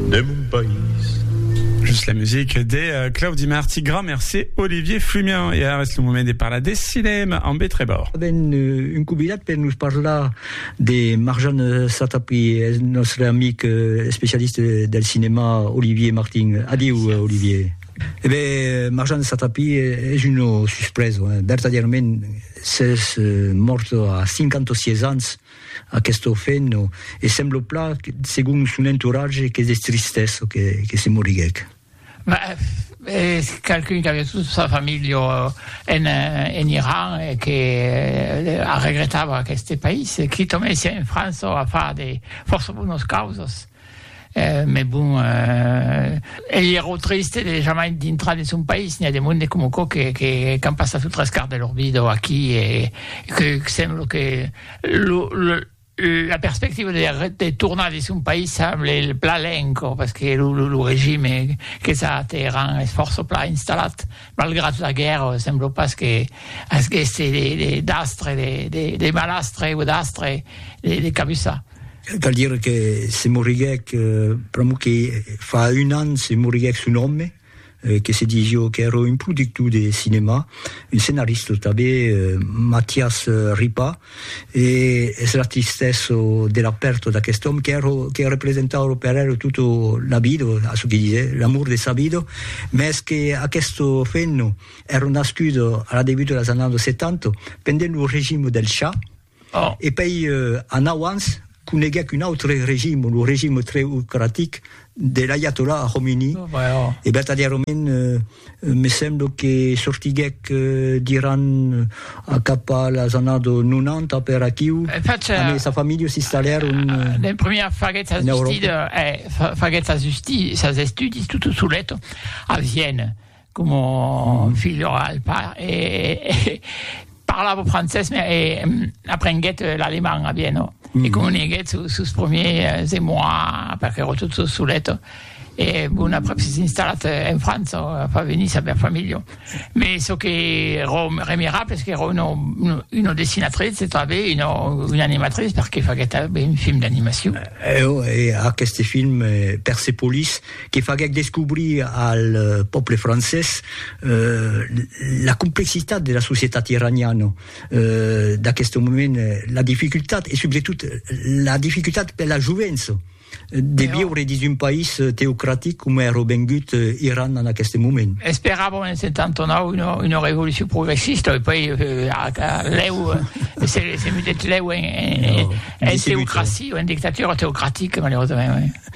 de mon país. Just la musique de Claudi Marty, grand merci Olivier Flumian. E ara es lo moment de parlar de cinèma amb E. Trèbor. Avèm un convidat per nos parlar de Marjan Satapi, eth nòstre amic especialista del cinèma Olivier Martin. Adiu Olivier. E ben, Marjan Satapi es un nom suspreso, vertadièrament, s'es mòrt a 56 ans. Aquest orfen no, e semblo pla, segon son entourage, qu'es de tristès çò que, que se moriguèc. Es qualqu'un qu'aviá tota sa familha en, en Iran e que arregretava aqueste país, quitament sia en França o a far de fòrça bonas causas. Mes bon, ei ero triste de jamai dintrar de son país, n'i a de monde com aquò que qu'an passat lo tres quart de lor vida o aquí e que semblo que lo la perspectiva de tornar de son país semble plan lenco, parce que lo regime que s'ateran es fòrça plan installat. Malgrat la guèrra, sembla pas que aguèsse d'astre, de malastre o d'astre de cabussar. Cal dire que se moriguèc, pr'amor que fa un an se moriguèc son òme, que se disió qu'èra un productor de cinèma, un scenarista tanben, Matias Ripart, E es la tristèssa de la pèrta d'aquest òme que ro, que representava lo Perero tota la vida, a çò que disè, l'amor de sa vida, mès que aquesta femna èra nascuda a la debut de las annadas 70, pendent lo regime del Shah, e pei anau ans, coneguèc un autre regime, lo regime treocratic de l'aiatolà Khomeini, e vertadièrament me semblo que sortiguèc d'Iran a cap a las annados 90 per aquiu, amb sa familha s'installèron en Euròpa. Como filho al pair e parlava francés me e aprenguèt l'alemand a Vieno e comuniguèt sos promiers emois perque ero tot sos solet e bon aprèp s'es installat en França fa venir sa bèl familha me çò que ero remirable es qu'ero uno una dessinatrice e tanben una una animatrice perque faguèt tanben un film d'animacion. Eo e aqueste film Persepolis. que faguèc descobrir al pòble francés la complexitat de la societat iraniana d'aqueste moment, la dificultat e subretot la dificultat per la jovença de viure dins un país teocratic coma èra vengut Iran en aqueste moment. Esperàvem en 79 una, una revolucion progressista e poi lèu se, se metèt lèu en, en, en, en teocracia, en dictatura teocratica, malerosament.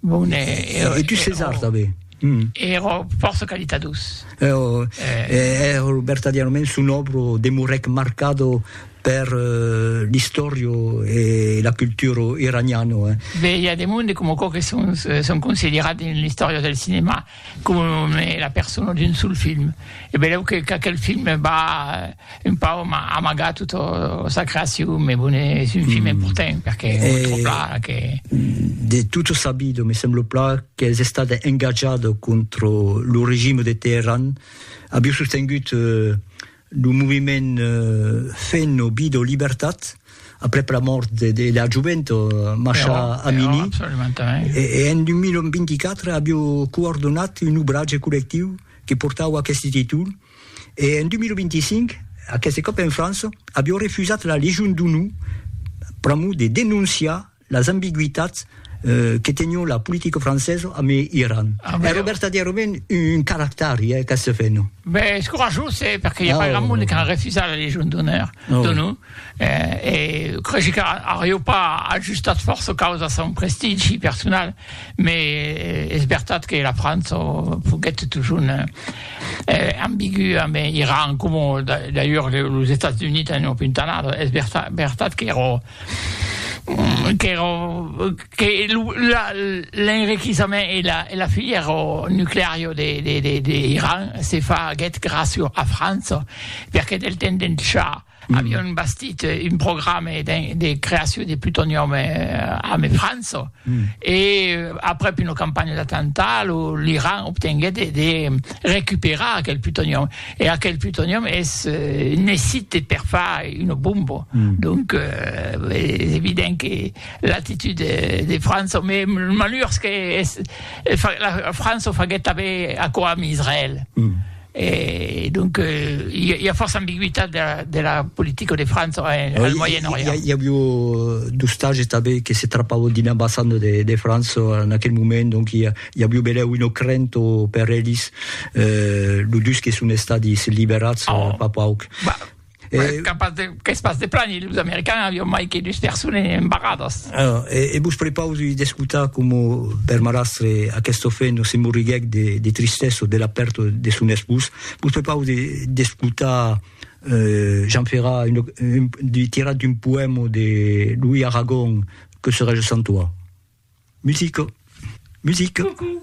Bon, e, e, e tu ses arta be. Ero fòrça calitadós. Ero, ero vertadièrament son òbro demorèc marcado per l'istòria e la cultura iraniana. Be, i a de monde coma aquò que son, son considerat dins l'istòria del cinèma coma la persona d'un sol film. E benlèu que qu'aquel film va, Un pau m'a amagat tota sa creacion, me bone, es un film important, perque me tròb pla que... De tutto sabido, me semblo pla qu'es estat engatjat contra lo regime de Teheran, aviu sostengut lo moviment Fen o Vida o Libertat, aprèp la mòrt de la jovent Masha Amini, e en 2024 aviu coordonat un obratge collectiu que portava aqueste títol, E en 2025, aqueste còp en França, avió refusat la Legion d'Onor pr'amor de denonciar las ambigüitats que tenió la politica francesa amb Iran. Èrò vertadièrament un caractari, eh, aqueste fenom. Ben, es corajós, eh, perque i a pas grand monde qu'a refusat la Legion d'Onor. E creshi qu'arriu pas ajustat fòrça caus a son prestigi personal, me es vertat que la França foguèt totjorn ambigua, me Iran coma d'ailleurs los Estats Units en opuntanat, es vertat qu'èra qu'èra que l'enriquissament e la filièra nucleària de Iran se faguèt gràcia a França, perque del temps d'en Shah, Avion bastit un programa de creacion de plutonium ame França e aprèp una campanha d'atemptat lo l'Iran obtenguèt de recuperar aquel plutonium e aquel plutonium es necite per far una bomba donc es evident que l'actitud de França me malhurs que es la França o faguèt tanben aquò ame Israèl. E donc i a fòrça ambigüitat de la politica de França en al Moyen Orient. I avió d'ostatges tanben que se trapavon dins l'ambassanda de França en aquel moment, donc i avió belèu una crenta per elis, los dus que son estadis liberats fa pauc. E... Beh, capaz de, qu'es pas de plan, e los americans avion mai que dus persones embarradas. Alors, e, e vos prepausi d'escotar como per marastre aquest ofeno se morriguèc de, de tristessa de la pèrta de son espós. Vos prepausi d'escotar euh, Jean Ferrat, un, un, di, tirat d'un poèma de Louis Aragon, Que serais-je sans toi? Musica! Musica! Coucou.